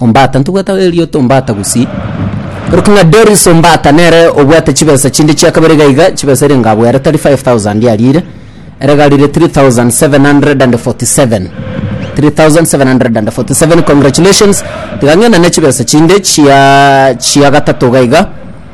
Ombata, ntobwata erioto Ombata gusii. Orokia ng'a Doris Ombata nere obwate chibesa chinde chia kabere iga iga, chibesa erio ngabo ere tari 5000 yarire, ere garire 3747. 3747 congratulations. Tiga ng'enane chibesa chinde chia chia gatato iga iga.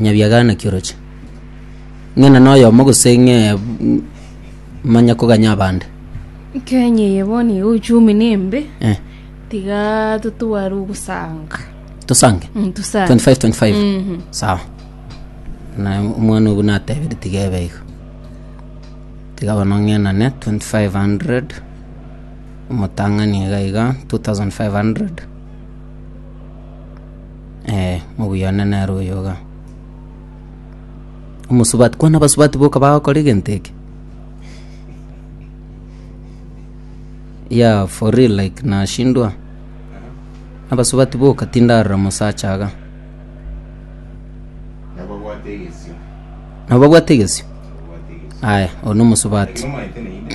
nyabiagana kioroche ng'ena noyomo gose ng'e manya koganya abande Kenya eye bono iga uchumi nembe eh, tiga totware ogosanga tosange Mm, tosange 25 25 Mhm. sawa na omwana obu natebire tiga ebe igo tiga bono ng'enane 2500 omotang'ani iga iga 2500 Eh, mubuya one nere oyo iga. Omusubati, kwana abasubati boka bagokora egento eke? Yeah, for real like nashindwa. Abasubati boka tindarora mosacha aga. nababwate egesio Nabo babwate egesio? nababwate egesio Aya, oyo nomosubati. Ekero omaete naende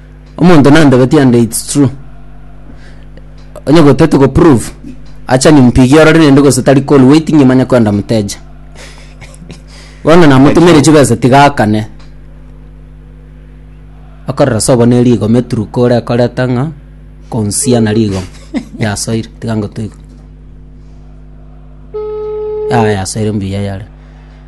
Omonto nandebetie and it's true. Onye gotete go prove acha nimpigie orore nende gose tari call waiting imanye kwenda muteja. Bono namotumire chibesa tiga akane. Akorora sobo ne rigo meturuka ore koreta ng'a konsia na rigo yasoire tiga ngotoigwe. Yaya yasoire mbuya yare.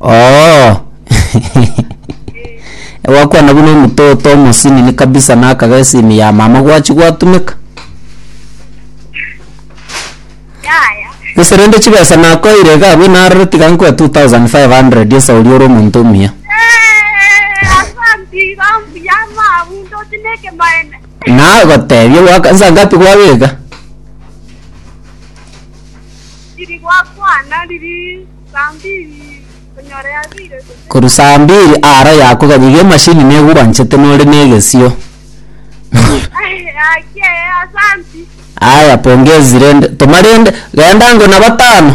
Oo gwakwana buna omototo omosinini kabisa nakaga esimu ya mama gwachi gwatumeka yaya gese rende chibesa nakoire iga abwo narore tiga nkoe 2500 esa oria ore omonto omuya asanti iga mbuya mabundo tineke maene nagotebia gwaka nsa ngapi gwabeka riri gwakwana riri Korwa saa mbiri aaro yaakwa gaki iga emashini negwanchete nore na egesio. Aya pongezi rende toma rende genda ango na batano.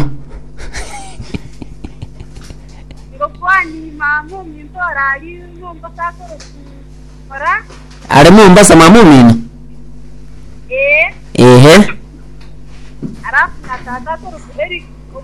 Are Mombasa mama omino? Ehe.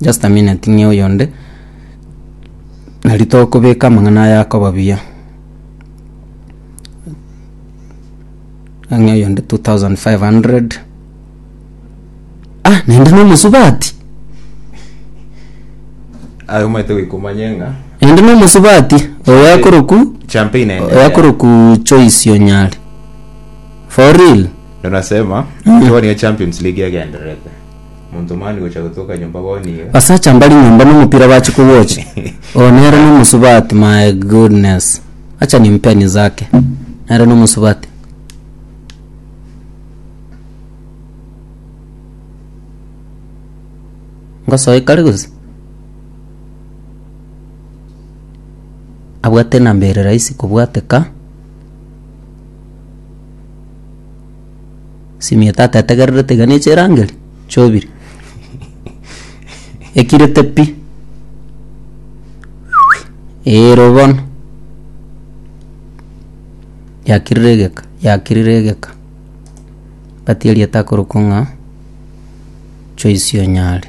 Just a minute ng'e oyonde. Na ritokobeka amang'ana aya akoba buya. Ng'e oyonde 2500. Ah, naende na omosubati. aye omanyete goika omanye ng'a Naende na omosubati. Oyo akoroku, champagne oyo inaendelea akoroku Joyce Onyari. For real. ndo nasema ntwani ya champions league egendererete Monto mani gocha gotoka nyomba bo nigo. Abasacha mbari nyomba nomopira bache kowochi oo nere nomosubati my goodness acha nimpeni zake nere nomosubati. Ngosoe kare gose abwate enamba ere rahisi kobwateka. Simio tata etegererete iga neche erangeri, chobiri ekirete pi eero bono, yakirire egeka yakirire egeka, ngati erieta akorokwa ng'a Joyce Onyare.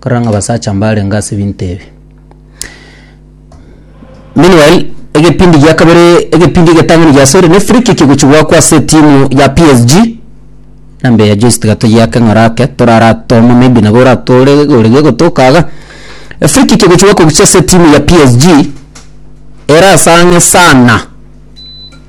Korora ng'a abasacha mbarenge ase ebinto ebi. Meanwhile, egepindi gia kabere egepindi egetang'ani giasoire na efree kick gochia goakwa ase etimu ya PSG, na mbe ya Joyce tiga toyiake ng'ora ake toraratome maybe nabo oratore egori gegotoka iga. Efree kick egochia goakwa gochia ase etimu ya PSG, ere ase ang'e sana.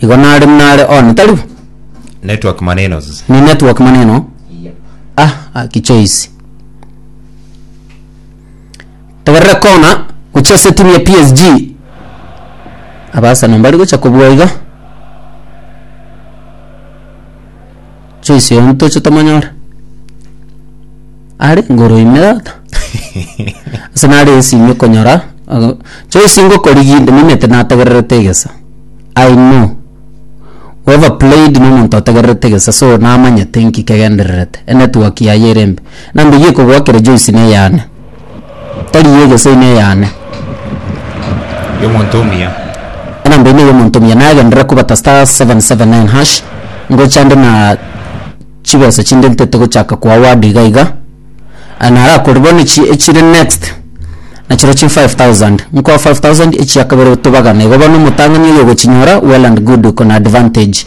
Igo nare nare one tari bo. Network manenos. Ni network maneno. Ah, ah, kichoisi. Tegerera kona gochia ase timu ya PSG. Abaasano mbari gocha kobua iga. Choice oyo ntoche tomonyore. Are ngoro ime tata. Ase nare esimi konyora aga Choice ngokorigia inde nimanyete nategererete egesa. I know we have played na omonto otegererete egesa so namanyete nki kegendererete e network yaye ere embe. Nambia eywo ekogoakera Joyce neyane. tari y'egeso ime eyane. Y'omonto omuya. Enamba ime y'omonto omuya nagenderere kobata star seven seven nine hash ngocha ande na chibesa chinde ntete gochaka ko award iga iga ah, narakore bono echi echire next nachiro chi five thousand nkoa five thousand echia kabere tobagane igo bono omotang'ani oyo ogochinyora well and good oko na advantage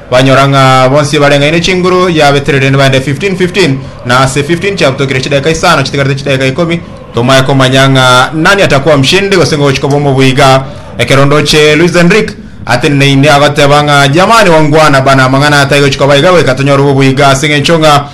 Banyora ng'a bonsi bareng'aine chinguru ya Beterere nibaende 15 15 na ase 15 chiabutokire chidaeka isano chitigarete chidaeka ikomi tomae komanya ng'a nani atakuwa mshindi gose ng'o gochika obomo boiga ekero ndoche Luis Enrique atenena inde agoteba ng'a jamani wangwana bana amang'ana ataigochika baiga goika tonyore oboboiga ase ng'encho ng'a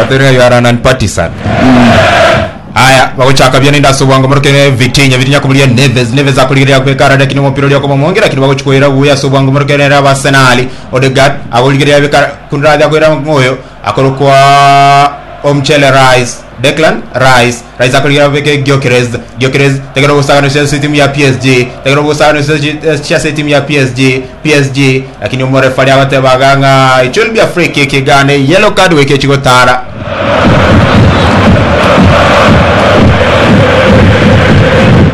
Waterera you are an unpartisan. Aya bagochaka bia nende ase obwango moroke ne Vitinha Vitinha koburia Neves Neves akorigereria kwekara lakini omopira oria okomomonge lakini bagochikoira buya ase obwango moroke nere aba Arsenal Odegaard agorigereria bekara kunde akoira ngoyo akorokwa Omchele Rice Declan Rice Rice akorigera abeke Gyökeres. Gyökeres tagera ogosaganisia ase etimu ya PSG. Tagera ogosaganisia ase- chia ase etimu ya PSG. PSG lakini omorefari agoteba iga ng'a it will be a free kick iga ande yellow card goika echi gotara.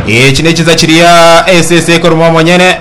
Echi nechinsa chiria esese ekoruma omonyene.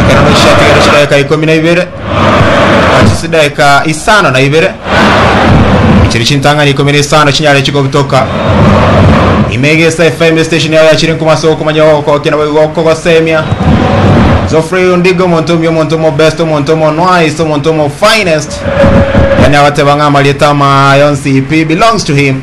Ekero Moishe atigeire chidaeka ikomi na ibere, nachi chidaeka isano na ibere, chiria chintang'ani ikomi na isano chinyare chikobutoka, ime egesa efa emesete esio nigo yachire nkuma ase okomanya ogokokia naboigo okogosemia. Geoffrey Ondiga, omonto omuya, omonto omobest, omonto omonwais, omonto omofinest, yaani agoteba ng'a amarieta ama yonsi pi belongs to him.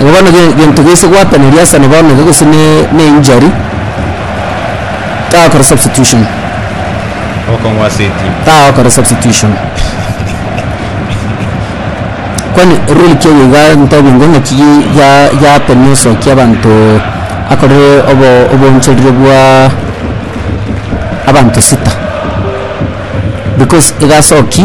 Igo bono ge- gento gese gwataneri ase na bono iga gose ne- ne injury, tagokora substitution, Okong'wa ase etimu. tagokora substitution. Kwani rule ki eye iga ntebingwe ng'aki gi- gia- giatemia osokia abanto akorire obo- oboonchereri bwa abanto sita, because iga asoki.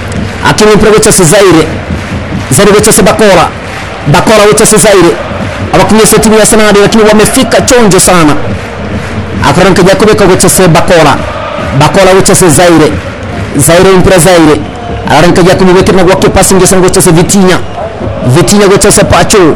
Akini mpore gocha ase Zaire, Zaire gocha ase bakora, bakora gocha ase Zaire, abakumia ase timu ya Arsenal lakini wamefika chonjo sana, akorora nkaji akobeka gocha ase bakora, bakora gocha ase Zaire, Zaire mpore Zaire, arore nkaji akomobekerera gwa kepasing ase gocha ase Vitinha, Vitinha gocha ase Pacho,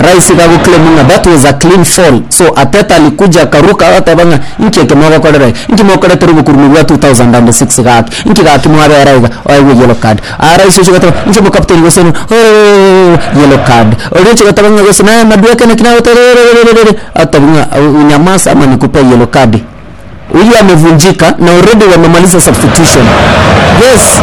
Raisi ga goclaim ng'a that was a clean fall so Arteta alikuja akaruka agateba ng'a inki eke mogokorera iga? Inki mokorete robokurume bwa 2006 gaki? Inki gaki mwabera iga? Oegwe yellow card. Aa raisi ochia goteba inche omocaptain gose ng'a ooh yellow card. Oria ochia goteba ng'a gose naye Madueke naki nagoteba rererererere atebi ng'a unyamaase ama nikupee yellow card. Huyu amevunjika na already wamemaliza substitution. Yes.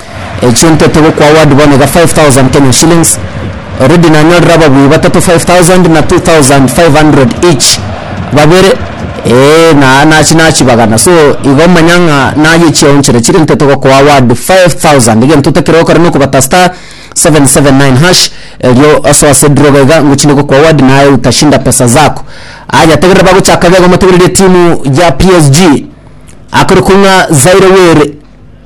Echientete gokwa award bono iga 5000 Kenyan shillings. Already nanyorire ababui batato 5000 na 2500 each babere eh, na nachi nachibagana so igo omanya ng'a naye echiaonchire chire ntete gokwa award 5000 egento otakire gokora nokobata star 779 hash erio osoe ase draw iga iga ngochinde gokwa award naye utashinda pesa zako aya tegerera bagochaka iga iga motegereri etimu ya PSG akore kong'a Zaire Were.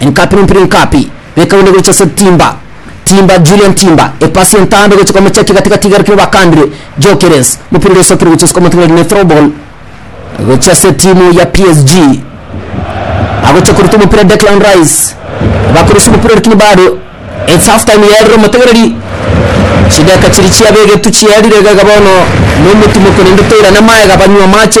Enkapi n'ompiri Enkapi bekabu negocha ase Timba Timba Julian Timba epasi entambe gocha kwa Mochaki gatigati iga arikire bakandire Gyökeres omopira oria osokire gocha ase kwa Montreal ne throw ball gocha ase timu ya PSG agocha koruta omopira Declan Rice bakoresa omopira lakini bado it's half time yerire omotegereri chideka chiri chia begetu chierire iga iga bono nomotumoko naende toirane amaega banywe amache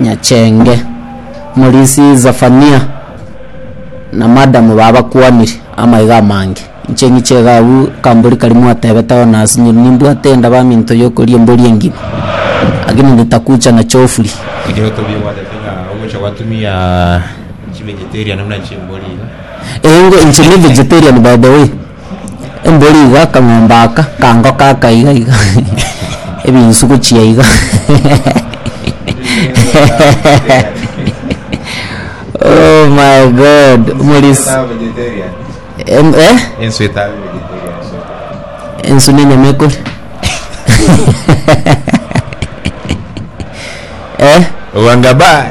Nyachenge, omorinsi Zefania, na madam babakwanire amaiga amange. Inche ng'iche iga agwo akambori karia mwatebeteho nase nyiri nimbwate enda baminto yokoria embori engima lakini nitakucha na chofuri. Ekero tobie gwatete ng'a ogocha gwatumia chivegetarian buna chimbori iga. Eeh inche ni vegetarian by the way. Embori iga akang'ombe aka akangoka aka iga iga ebinsu gochia iga oh my God omorisia em eh ensu etabe vegetarian so ensu ne enyama ekoria eh Wangabaya.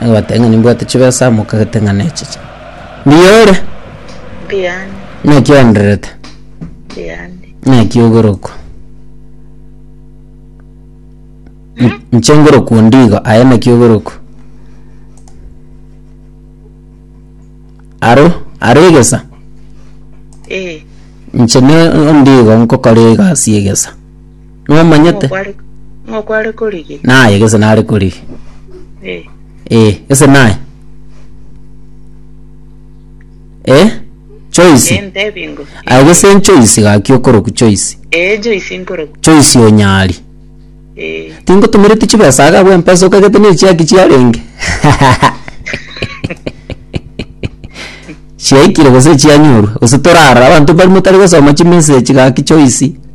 Abateng'ani mbwate chibesa mokagete ng'a nechiche. Mbiore, Mbiani, naki oendererete, mbiani. naki ogorokwa. N- Nche ngorokwa ondigo, aye naki ogorokwa. Aro, aro egesa, Ee, nche ne ondigo nkokora egasi y'egesa. nomanyete? Ng'o okware korigia? Naye gese nare korigia. Eh. Eh, gese naye. Eh, Joyce. Eh, ntebi ngo. Aye gese Joyce gaki okoroku Joyce. Eh, Joyce nkoroku. Joyce onyari. Eh. Tingotomereti chibesa aga bwe mpesa okagete ne chiaki chiarenge. Chiaikire gose chianyorwa. Gose torara abantu bari motari gosoma chimessage gaki Joyce.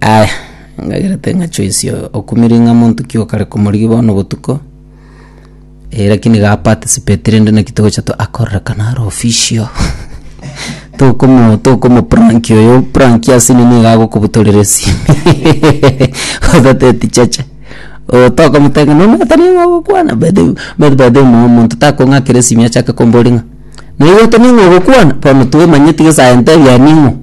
Aya, ngacherete ng'a choice oo okumire ng'a monto ki okare komorigia bono botuko, eh lakini gaparticipatirwe rende naki togocha to akorekana are official, tokomo tokomopranki oyo pranki ase nini iga agokobutorera esimi otateti chacha, oyo tokomotebia ng'a nonya tari ng'a ogokwana by the way omanyete by the way omo omonto takong'akera esimi achake kombori ng'a naigote ning'o ogokwana bono twemanyeti gesa entebia ning'o.